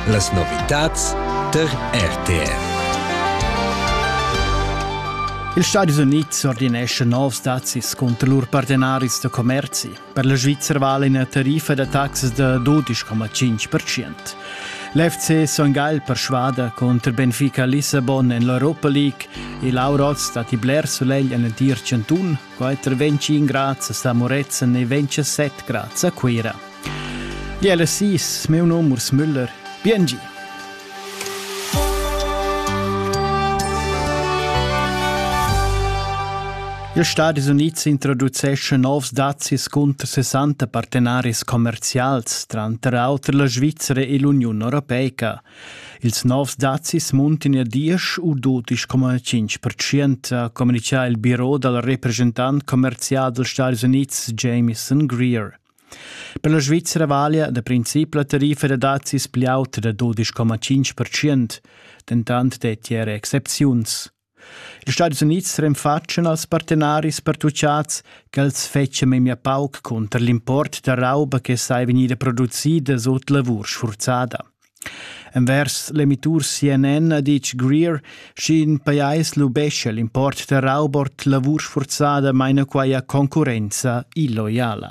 Las novitads tar RTR. Ils Stadis Unids ordinescha novs dazis cunter lur partenaris da commerzi. Per la Svizzera vale una tariffa da taxas da 12,5%. L'FC Son Gagl persuada contro Benfica Lissabon en l'Europa League e l'Aurot stati bler solegl en l'entir chantun Quater ventgin grazias a Moretzen e ventisset grazie a Cuira. Jelle sis, meu nom Urs Müller. Biengi! Ils Stadis Unids introduceschan novs dazis cunter 60 partenaris commerzials, tranter auter la Svizzera e l'Uniun Europeica. Ils novs dazis muntin er diesch u dudisch coma cinc percent, ha communitgà il biro dal represchentant commerzial dals Stadis Unids Jameson Greer. Per la Svizzera valia da princip la tariffa da dazis pli auta da 12,5%, dentant dettia era excepziuns. Ils Stadis Unids renfatschan als partenaris pertuchads ch'els fetschan memia pauc cunter l'import da rauba che saja vegnida producida sut lavur sfurzada. Envers l'emitur CNN ha ditg Greer, sch'in pajais lubescha l'import da rauba ord lavur sfurzada, maina quai a concurrenza illoiala.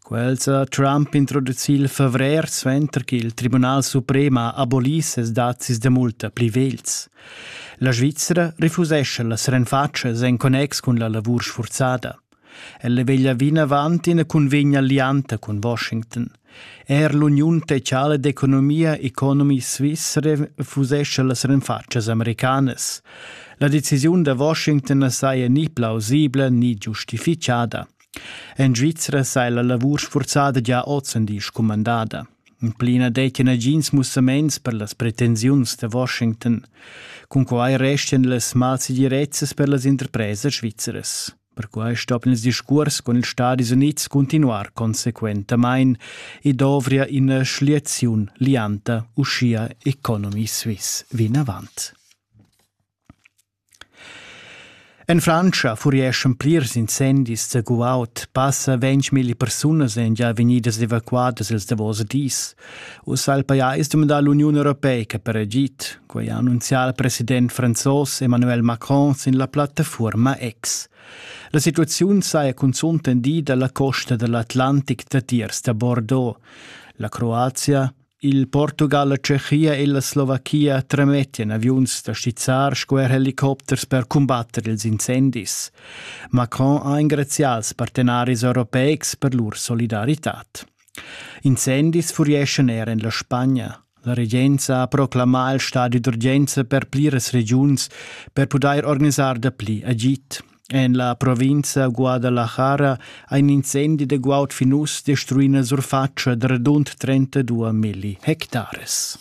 Quels ha Trump introducì il favrer suenter ch'il Tribunal suprem ha abolì ses dazis da multa pli vegls. La Svizra refusescha las renfatschas en connex cun la lavur sfurzada. Ella veglia vinavant ina cunvegna allianta cun Washington. Er l'Uniun Tecala d'Economia Economy Svizzera refusescha las renfatschas americanas. La decisiun da Washington na saja ni plausibla ni giustifichada. En Svizra sai la lavur sfurzada gia ozendi scumandada. In pli na dettia nagins mussaments per las pretensiuns da Washington. Cunquai restian las malsegirezzas per las interpresas svizzeras. Perquai stoppien ils discurs con ils Stadis Unids continuar consequentamain e dovria ina schliaziun lianta uschia Economy Suisse vinavant. En Frantscha furieschan plirs incendis da guaud. Passa ventmilli persunas èn gia vegnidas evacuadas ils davos dis. Ussa ha il pajais dumandà l'Uniun europeica per agid. Quai ha annunzià il president franzos Emmanuel Macron sin la plattafuorma X. La situaziun saja cunzunt tendida la costa dall'Atlantic datiers da Bordeaux. La Croazia Il Portugal, la Tschechia e la Slovachia tremettian aviuns da stizzar sco er helicopters per cumbatter ils incendis. Macron ha engrazià als partenaris europeics per lur solidaritad. Incendis furieschan er en la Spagna. La regenza ha proclamà il stadi d'urgenza per pliras regiuns per pudair organisar dapli agid. En la provinza Guadalajara ha in incendi da guaud fin uss destruì ina surfatscha da radund 32 milli hectares.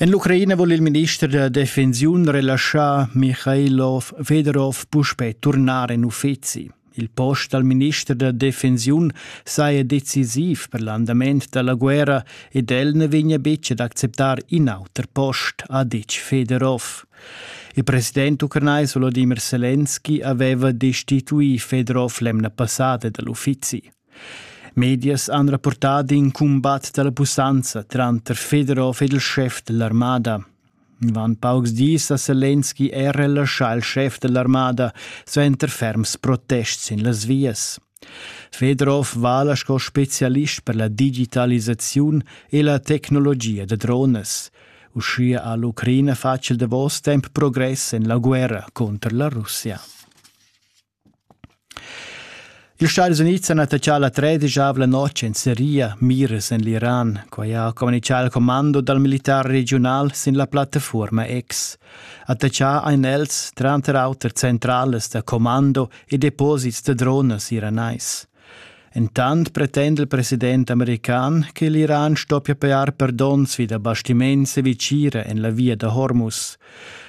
En l'Ucraina vul il minister da defensiun relaschar Michailov Fedorov puspè turnar en uffizi. Il post dal minister da defensiun saja decisiv per l'andament da la guerra ed el na vegnia betg ad acceptar in auter post, ha ditg Fedorov. Il president ucranais Volodimir Selenski aveva destituì Fedorov l'emna passada da l'uffizi. Medias han rapportà d'in cumbat da la pussanza tranter Fedorov ed il schef dell'armada. Dvan paucs dis ha Selenski er relaschà il schef dell'armada suenter ferms protests sin las vias. Fedorov vala sco specialist per la digitalisaziun e la tecnologia da drones. Uschia ha l'Ucraina fatg il davos temp progress en la guerra contro la Russia. Ils Stadis Unids han attaccà la tredischavla notg en Seria, Miras en l'Iran. Quai ha communitgà il commando dal militar regiunal sin la plattafuorma X. Attaccà ein els tranter auter centralas da commando e deposits da dronas iranais. Entant pretenda il president american che l'Iran stoppia pajar per donns vi da bastiments e vitgira en la via da Hormuz.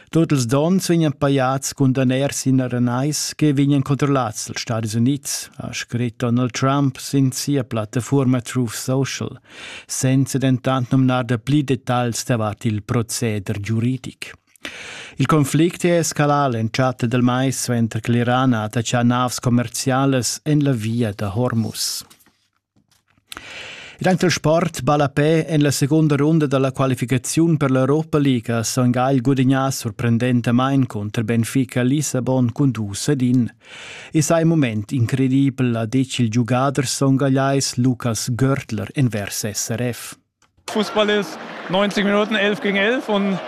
Tut ils donns vegnan pajads cun daners sin aranais che vegnan controllads dals Stadis Unids, ha scrit Donald Trump sin sia plattafuorma Truth Social, senza dentant numnar da pli detagls davart il proceder giuridic. Il conflict è escalà l'entschatta dal mais suenter che l'Iran ha attachà navs commerzialas en la via da Hormuz. Ed il sport ballapè en la segunda runda da la qualificaziun per l'Europa League ha Son Gagl gudagnà sorprendentamain cunter Benfica Lissabon cun dus ed in. I sa in mument incredibel, ha ditg il giugader songagliais Lukas Görtler envers SRF. Fußball ist 90 Minuten 11 gegen 11 und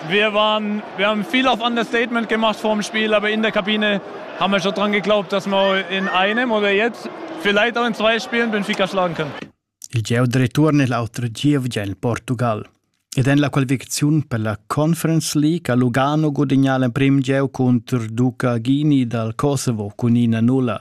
wir, waren, wir haben viel auf Understatement gemacht vor dem Spiel, aber in der Kabine haben wir schon dran geglaubt, dass wir in einem oder jetzt vielleicht auch in zwei Spielen Benfica schlagen können. Il geo de ritorno è l'altro giovane in Portugal. Ed è la qualificazione per la Conference League a Lugano guadagnò il primo geo contro Duca Ghini dal Kosovo con una nulla.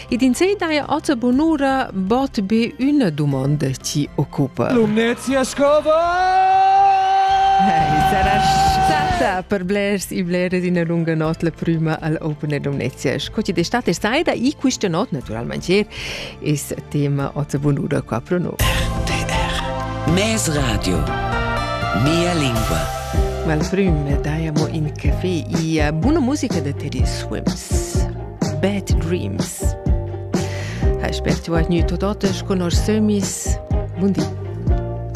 Ed in sei daja oza bonura bot be üna dumonda ti occupa. Lumnezia scova! Hey, sarà stata per blers e blers in lunga not la prima al Open Lumnezia. Sco ti d'estate sai da i questa not naturalmente es tema oza bonura qua pro no. RTR Mes Radio Mia lingua Mal prima daiamo in caffè e buna musica da Teddy Swims. Bad Dreams. Hai spert tu hai gnü tot otas con nos sömis. Bundi.